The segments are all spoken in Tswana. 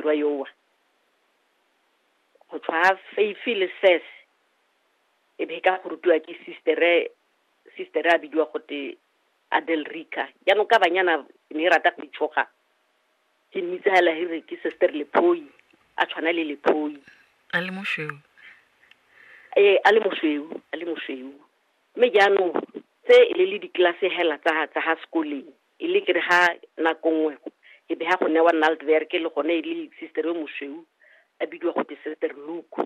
morwa yowa go tshwa feifi le ses e be ka go rutiwa ke sistere sistere a bidiwa gote adel rica jaanong ka banyana ne e rata go itshoga ke mmitsa hela he re ke sister lephoi a tshwana le lephoi a le mosweu ee a le mosweu a le mosweu mme jaanong tse e le le ditlelase hela tsa tsa ha sekoleng e le kere ga nako nngwe e be ga go newa naldwerk le gone e le sister yo mosweu a bidiwa go te sister luku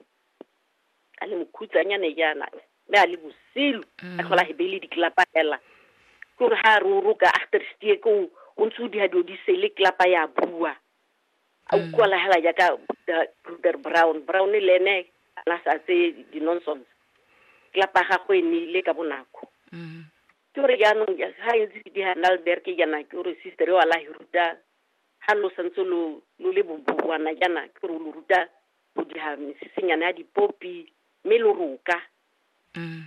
a le mokhutsanyane jaana mme a le bosilu a tlhola mm. hebe le diklapa fela ke gore ga re o roka achterstiek o o ntse o diha dilo di sele klapa ya bua a mm. utlwala hela jaaka bruder brown brown le ene ana sa tse di-nonsense klapa ya gagwe e nile ka bonako mm. Ke gore jaanong ja- ga ntse ke diga Nalberg ke jaana ke gore sister yo a la hi ruta ha lo santse lo lo le boboana jaana ke gore o lo ruta go diga mesesenyana ya dipopi mme lo roka Mm.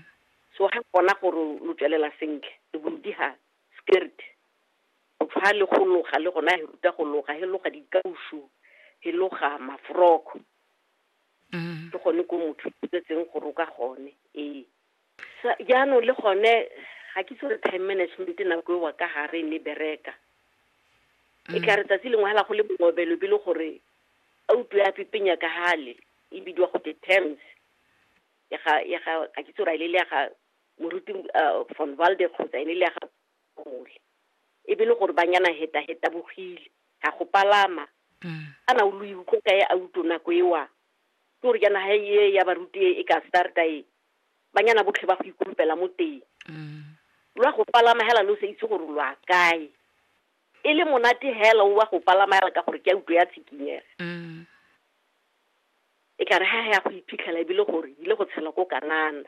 so ga kona gore lo tswelela sentle le bo lo diga skirt go tshwa le go loga le gona he ruta go loga he loga dikausu he loga mafroko Mm. ke gone ko motho tsetseng go roka gone ee Sa, jaanong le gone ga ke itse gore time management nako ewa ka gare ne bereka e mm. ka re tsatsi lengwe hela go le mongobelo be le gore a utlwe a pipenya ka gale e bidiwa go te terms ya ga ya ga ka ke tsora ile le ya ga moruti uh, von walde kgotsa ene le ya ga mole e be le gore ba nyana heta heta bogile ga go palama mm. a na o lo iutlwa ka e a utlo nako ewa ke gore jaana ga e ya baruti e, e ka starta e banyana botlhe ba go ikumpela mo teng lwa go palama hela lo sa itse gore lwa kae e le monate hela o wa go palama hela ka gore ke a utlwa ya tshikinyega e ka re ha ya go iphitlhela ebile gore ile go tshela ko kanana